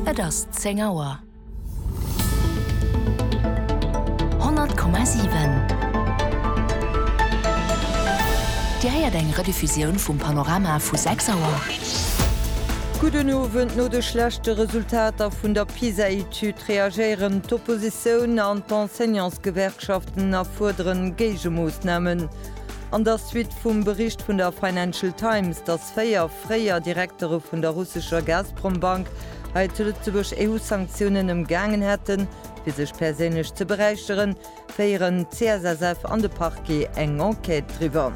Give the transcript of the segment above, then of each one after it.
Et ass 10 Auer. 100,7 Dir héiert eng Rediffusioun vum Panorama vu 6 Auer. Gudden Owend, No de schlechte Resultater vun der PISA-Etüd reagéieren d'Oppositioun an d'Enseignantsgewerkschaften a fuerderen Géigemoossnamen. An der Suite vum Bericht vun der Financial Times, datt. Véier fréier Direktere vun der russescher Gazprombank hei zu Lëtzebuerg EU-Sanktiounen ëmgaangen hätten, fir sech perséinlech ze beräicheren, féieren d'CSSF an de Parquet eng Enquête driwwer.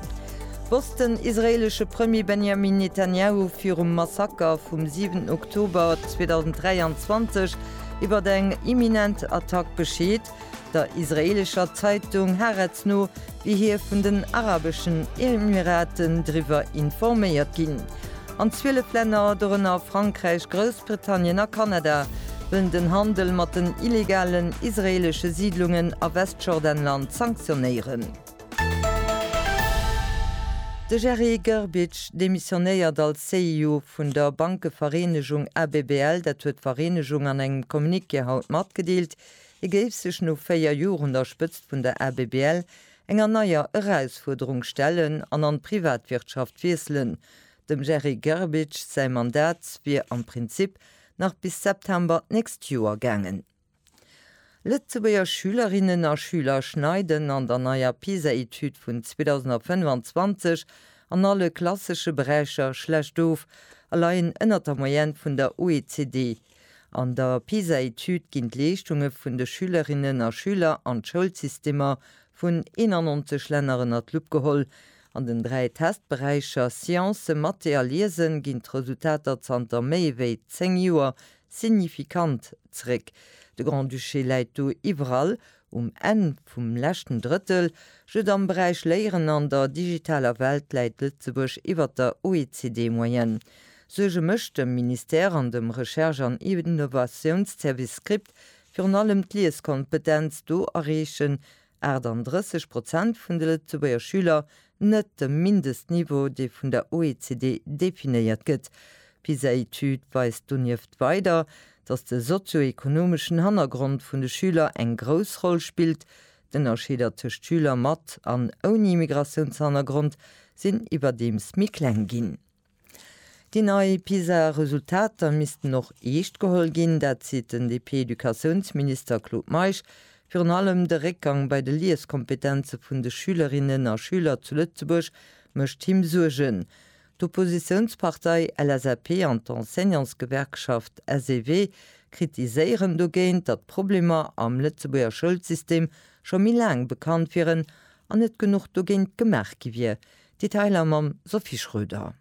Wosst den israeelesche Premier Benjamin Netanjahu virum Massaker vum 7 Oktober 2023 iwwert eng imminent Attack Bescheed? Der israeelescher Zeitung Haaretz no wier hie vun den Arabeschen Emiraten driwwer informéiert ginn. An 12 Länner, dorënner Frankräich, Groussbritannien a Kanada, wëllen den Handel mat den illegalen israeelesche Siidlungen a Westjordanland sanktionéieren. De Jerry Grbic demissionéiert als CEO vun der Bankevereenegung ABBL, dat huet d'Vereenegung an engem Communiqué haut matgedeelt. Hie géif sech no 4 Jor un der Spëtzt vun der ABBL enger neier Erausfuerderung stellen an an d'Privatwirtschaft wiesselen. Dem Jerry Grbic säi Mandat wier am Prinzip nach bis September d'nächst Joer gaangen. Lëtzebuerger Schülerinnen a Schüler schneiden an der neier PISA-Etüd vun 2025 an alle klassesche Beräicher schlecht of a leien ënnert der Moyenne vun der OECD. An der PISA-Etüd ginn d'Leeschtunge vun de Schülerinnen a Schüler an d'Schoulsystemer vun 91 Länner ënner d'Lupp geholl. An den dräi Testberäicher Science, Mathé a Liesen ginn d'Resultater zanter méi ewéi zéng Joer signifikant zeréck. De Grand-Duché läit do iwwerall Um Enn vum leschten Drëttel Jut am Beräich Léieren an der digitaler Welt läit Lëtzebuerg iwwert der OECD-Moyenne. Suerge mécht dem Ministère an dem Recherche an Innovatiounsservice Script virun allem d'Lieskompetenz, do erreechen 38 Prozent vun de Lëtzebuerger Schüler net dem Mindestniveau, dee vun der OECD definéiert gëtt. D'PISA-Etüd weist donieft weider, datt de sozio-ekonomeschen Hannergrond vun de Schüler eng grouss Roll spillt. D'Ënnerscheeder tëscht Schüler mat an ouni Immigratiounshannergrond sinn iwwerdeems méi kleng ginn. Déi nei PISA-Resultater missten och eescht geholl ginn. Dat seet den DP-Educatiounsminister Claude Meisch. Virun allem de Réckgang bei de Lieskompetenze vun de Schülerinnen a Schüler zu Lëtzebuerg mécht him Suergen. D'Oppositiounspartei LSAP an d'Enseignantsgewerkschaft SEW kritiséieren dogéint, datt d'Problemer am Lëtzebuerger Schoulsystem scho méi laang bekannt wieren an net genuch dogéint gemaach gi wier, Detailer mam Sophie Schröder.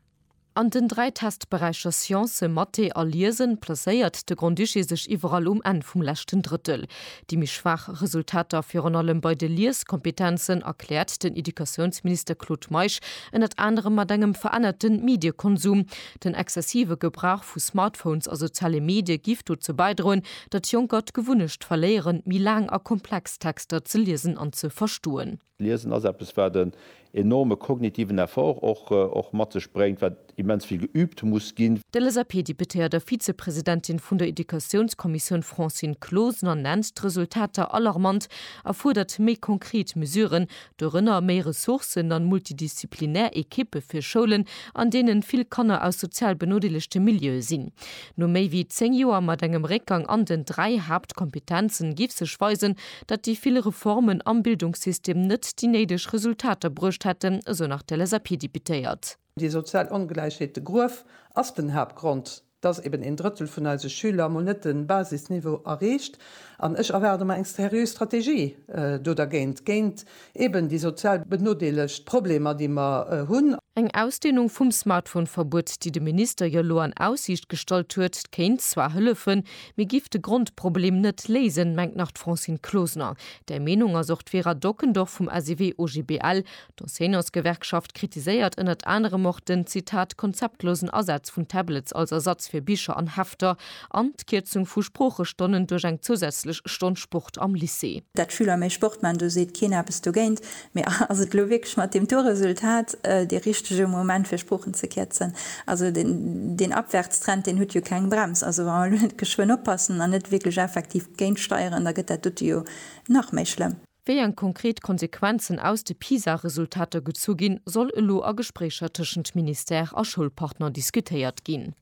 An den dräi Testberäicher Science, Mathé a Liesen placéiert de Grand-Duché sech iwwerall um Enn vum leschten Drëttel. Déi méi schwaach Resultater virun allem bei de Lieskompetenzen erkläert den Educatiounsminister Claude Meisch ënnert anerem mat engem verännerte Mediekonsum. Den exzessive Gebrauch vu Smartphones a soziale Medie giff dozou bäidroen, datt Jonker d'Gewunnecht verléieren, méi laang a komplex Texter ze liesen an ze verstoen. Liesen ass eppes, wat en enorme kognitiven Effort och mat sech bréngt, wat immens vill geüübt muss ginn. D'LSAP-Deputéiert a Vizepresidentin vun der Educatiounskommissioun Francine Closener nennt d'Resultater alarmant a fuerdert méi konkret Mesuren, dorënner méi Ressourcen an multidisziplinär Ekippe fir Schoulen, an deenen vill Kanner aus sozial benodeelegte Milieue sinn. No méi wéi 10 Joer mat engem Réckgang an den dräi Haaptkompetenzen giff sech weisen, datt déi vill Reformen am Bildungssystem net déi néideg Resultater bruecht hätten, esou nach d'LSAP-Deputéiert. Déi sozial Ongläichheet, de Gruef, ass den Haaptgrond, datt eben een Drëttel vun eise Schüler mol net de Basisniveau erreecht. An ech erwaarde mer eng seriö Strategie do dergéint, géint Eben déi sozial benodeelegt Problemer, déi mer hunn. Eng Ausdehnung vum Smartphone-Verbuet, déi de Minister jo elo an Aussiicht gestallt huet, kéint zwar hëllefen, mee giff de Grondproblem net léisen, mengt nach d'Francine Closener. Där Meenung ass och d'Vera Dockendorf vum SEW-OGBL. D'Enseignantsgewerkschaft kritiséiert ënnert anerem och den, Zitat, konzeptlosen Asaz vun Tablets als Ersatz fir Bicher an Hefter An d'Kierzung vu Sproochestonnen duerch eng zousätzlech Stonn Sport am Lycée. Dat d'Schüler méi Sport man, do seet keen eppes dogéint. Mee ass et elo wierklech mat deem Tourresultat dee richtege Moment fir Sproochen ze kierzen? Also deen Abwärtstrend deen huet jo keng Brems. Also wa mer elo net geschwënn oppassen an net wierklech effektiv géintsteieren, da gëtt dat dote jo nach méi schlëmm. Wéi eng konkret Konsequenzen aus de PISA-Resultater gezu ginn, soll elo a Gespréicher tëschent Ministère a Schoulpartner diskutéiert ginn.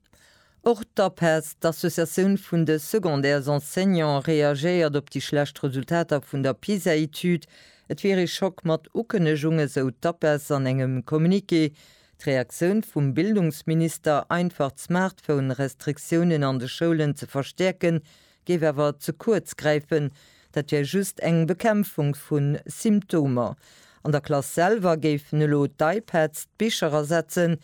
Och d'APES, d'Associatioun vun de Secondaires Enseignants, reagéiert op déi schlecht Resultater vun der PISA-Etüd. Et wier ee Schock mat Ukënnegung, esou d'APES an engem Communiqué. D'Reaktioun vum Bildungsminister, einfach d'Smartphone-Restriktiounen an de Schoulen ze verstäerken, Géif awer ze kuerz gräifen. Dat wär just eng Bekämpfung vu Symptomer. An der Klass selwer géifen elo d'iPads d'Bicher ersetzen.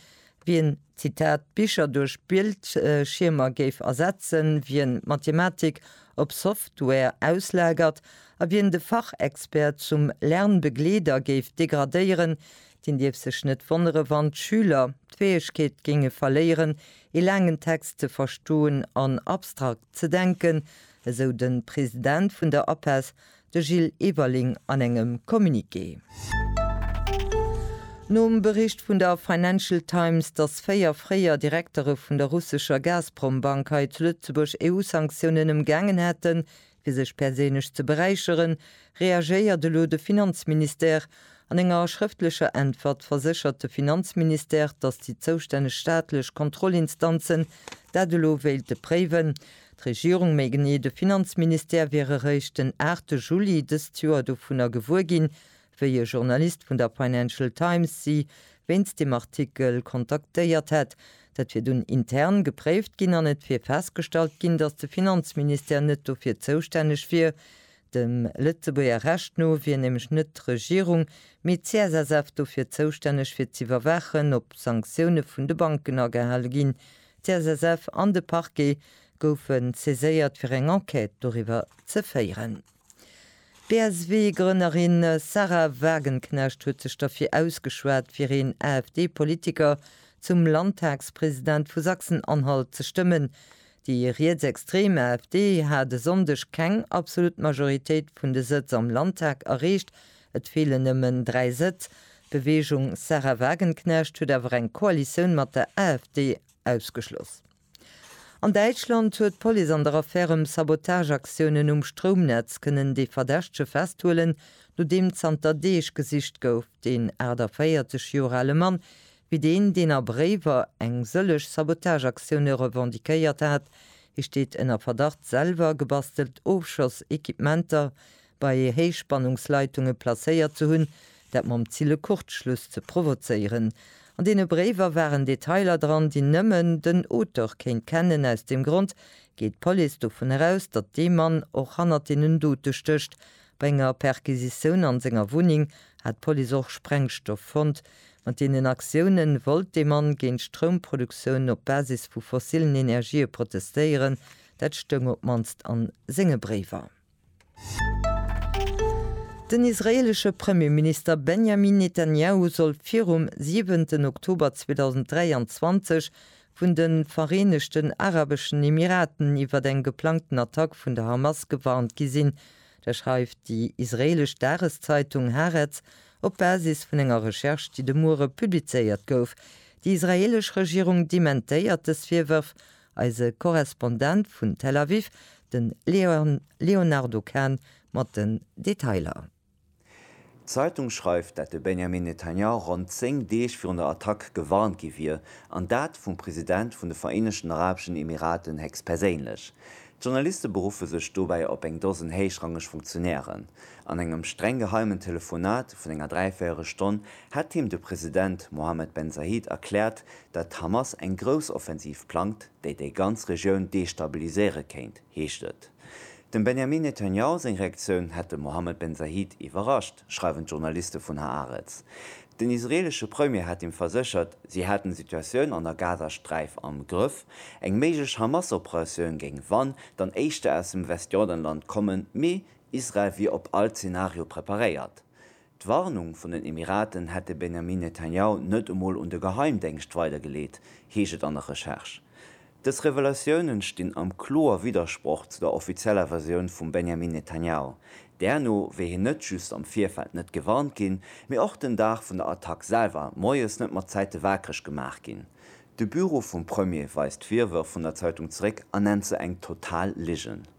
Wien, Zitat, d'Bicher duerch Bildschiermer géif ersetzen, wien d'Mathematik op Software auslagert a wien de Fachexpert zum Lernbegleeder géif degradéieren, deen dierf sech net wonnere wann d'Schüler d'Fäegkeet géinge verléieren, ee laangen Text ze verstoen an abstrakt ze denken, esou de President vun der APESS, de Gilles Everling an engem Communiqué. Nom Bericht vun der Financial Times, datt véier fréier Direktere vun der russescher Gazprom-Bank hei zu Lëtzebuerg EU-Sanktiounen ëmgaangen hätten, Fir sech perséinlech ze beräicheren, reagéiert elo de Finanzministère. An enger schrëftlecher Äntwert verséchert de Finanzministère, datt déi zoustänneg staatlech Kontrollinstanzen dat elo wéilte préiwen. D'Regierung, méi genee de Finanzministère, wiere réischt den 8 Juli dëst Joer dovunner gewuer ginn, Wéi e Journalist vun der Financial Times si wéinst dem Artikel kontaktéiert hätt. Dat wier dunn intern gepréift ginn an et wier festgestallt ginn, datt de Finanzministère net dofir zoustänneg wier. Dem Lëtzebuerger Recht no wier nämlech net d'Regierung, mee d'CSSF dofir zoustänneg fir z'iwwerwaachen, ob Sanktioune vun de Banken agehale ginn. D'CSSF an de Parquet goufe saiséiert fir eng Enquête doriwwer ze féieren. D'BSW-Grënnerin Sahra Wagenknecht huet sech derfir ausgeschwat, fir een AfD-Politiker zum Landtagspresident vu Sachsen-Anhalt ze stëmmen. Déi rietsextrem AfD hat e Sonndeg keng absolut Majoritéit vun de Sëtz am Landtag erreecht, et feelen nëmmen dräi Sëtz. D'Beweegung Sahra Wagenknecht huet awer eng Koalitioun mat der AfD ausgeschloss. An Däitschland huet d'Police an der Affär ëm Sabotageaktiounen um Stroumnetz kënnen de Verdächtege festhuelen, nodeem zanter Deeg gesicht gouf. Deen 48 Joer ale Mann wier deen, deen a Bréiwer eng sëllech Sabotageaktioune revendiquéiert hat. Hie steet ënner Verdacht, selwer gebastelt Ofschoss-Equipementer bei Héichspannungsleitunge placéiert ze hunn, dat mam Zil e Kurzschluss ze provozéieren. An deene Bréiwer waren Detailer dran, déi nëmmen den Auteur kéint kennen. Aus deem Grond geet d'Police dovun eraus, datt dee Mann och hannert deenen Dote stécht. Bei enger Perquisitioun an senger Wunneng hat d'Police och Sprengstoff fonnt. Mat deenen Aktioune wollt dee Mann géint d'Stroumproduktioun op Basis vu fossillen Energië protestéieren, dat stoung op d'mannst a senge Bréiwer. Den israeelesche Premierminister Benjamin Netanjahu soll virum siwenten Oktober 2023 vun de Vereenegten Arabeschen Emiraten iwwer eng geplangten Attack vun der Hamas gewarnt gi sinn. Dat schreift déi israeelesch Dageszeitung Haaretz op Basis vun enger Recherche, déi de Muere publizéiert gouf. Déi israeelesch Regierung dementéiert dës Virwërf Eise Korrespondent vun Tel Aviv, de Léonardo Kahn mat den Detailer. D'Zeitung schreift, dat de Benjamin Netanyahu ronn 10 Deeg virun der Attack gewarnt gi wier, an dat vum President vun de Vereenegten Arabeschen Emiraten héchstperséinlech. D'Journaliste beruffe sech dobäi op eng Dosen héichrangeg Funktionären. An engem streng geheimen Telefonat vun enger Dräivéierelstonn hätt him de President Mohammed Ben Zayed erkläert, datt d'Hamas eng Groussoffensiv plangt, déi déi ganz Regioun destabiliséiere kéint, heescht et. Dem Benjamin Netanjahu seng Reaktioun hätt de Mohammed Ben Zayed iwwerrascht, schreiwen d'Journaliste vun Haaretz. Den israeelesche Premier hat him verséchert, si hätten d'Situatioun an der Gazasträif am Grëff. Eng méiglech Hamas-Operatioun géing wann dann éischter aus dem Westjordanland kommen, mee Israel wier op all Zenario preparéiert, D'Warnung vun den Emiraten hätt de Benjamin Netanjahu net emol un de Geheimdéngscht weidergeleet, heescht et an der Recherche. Dës Revelatiounen stinn am kloer Widdersproch zu der offizieller Versioun vum Benjamin Netanjahu. Därno wier hien net just am Virfeld net gewarnt ginn, mee och den Dag vun der Attack selwer moies net mat Zäite waakreg gemaach ginn. De Büro vum Premier weist d'Virwërf vun der Zeitung zeréck a nennt se eng total Ligen.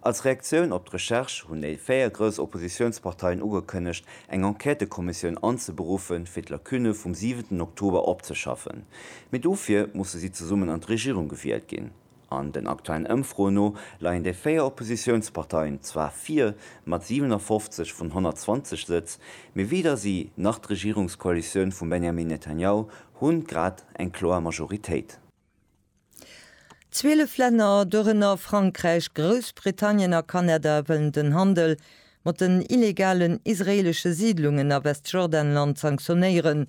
Als Reaktioun op d'Recherche hunn déi véier grouss Oppositiounsparteien ugekënnegt, eng Enquêtëkommissioun anzeberuffen, fir d'Lacunne vum siwenten Oktober opzeschaffen. Mee dofir musse si zesummen an d'Regierung gewielt ginn. An den aktuellen Ëmfroen no leien déi véier Oppositiounsparteien zwar vir, mat 57 vun 120 Sëtz, mee weder si nach d'Regierungskoalitioun vum Benjamin Netanjahu hunn grad eng kloer Majoritéit. Zwielef Länner, dorënner Frankräich, Groussbritannien a Kanada, wëllen den Handel mat den illegalen israeelesche Siidlungen a Westjordanland sanktionéieren.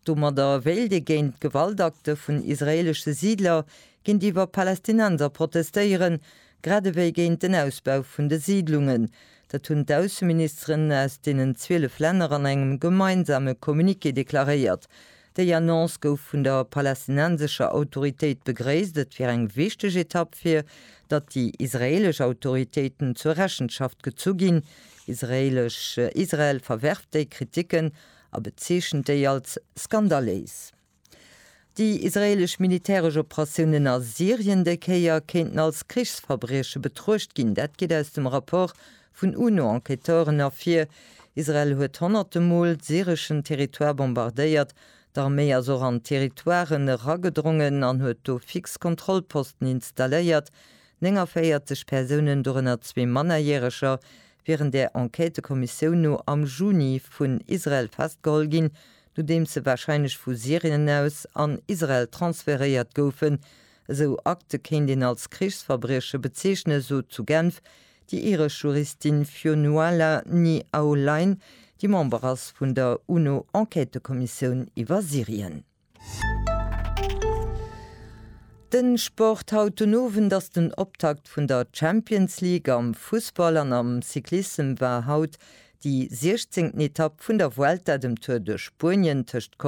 Domadder wéilt ee géint Gewaltakte vun israeelesche Siidler géintiwwer Palästinenser protestéieren, grad ewéi géint den Ausbau vun de Siidlungen. Dat hunn d'Ausseministeren aus deenen zwielef Länner an engem gemeinsame Communiqué deklaréiert. Déi Annonce gouf vun der palästinensescher Autoritéit begréisst. Et wier eng wichteg Etapp fir datt déi israeelesch Autoritéiten zur Rechenschaft gezu ginn. Israel verwerft déi Kriticken a bezeechent déi als skandaléis. Déi israeelesch militäresch Operatiounen a Syrien déi Kéier kéinten als Krichsverbrieche betruecht ginn. Dat geet aus dem Rapport Vun UNO-Enquêteuren ervir, Israel huet honnerte Mol syreschen Territoire bombardéiert, d'Arméi ass och an Territoiren eragedrongen an huet do fix Kontrollposten installéiert, 49 Persounen, dorënner zwee Mannerjäreger, wieren där Enquêtekommissioun no am Juni vun Israel festgeholl ginn, nodeems se warscheinlech vu Syrien aus an Israel transferéiert goufen. Esou Akte kéint een als Krichsverbrieche bezeechnen, sot zu Genf Déi iresch Juristin Fionnuala Ni Aulain, déi Member ass vun der UNO-Enquêtëkommissioun iwwer Syrien. De Sport, Haut den Owend ass den Optakt vun der Champions League am Fussball an am Cyclissem war haut déi siechzéngten Etapp vun der Vuelta, dem Tour de Spuenien, tëscht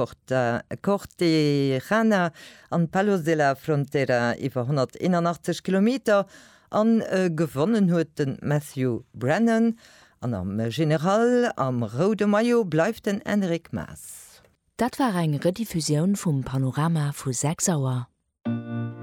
Cortejarena an Palos de la Frontera, iwwer 181 Kilometer A gewonnen huet den Matthew Brennan an am General am roude Maillot bleift den Enric Maas. Dat war eng Rediffusioun vum Panorama vu 6 Auer.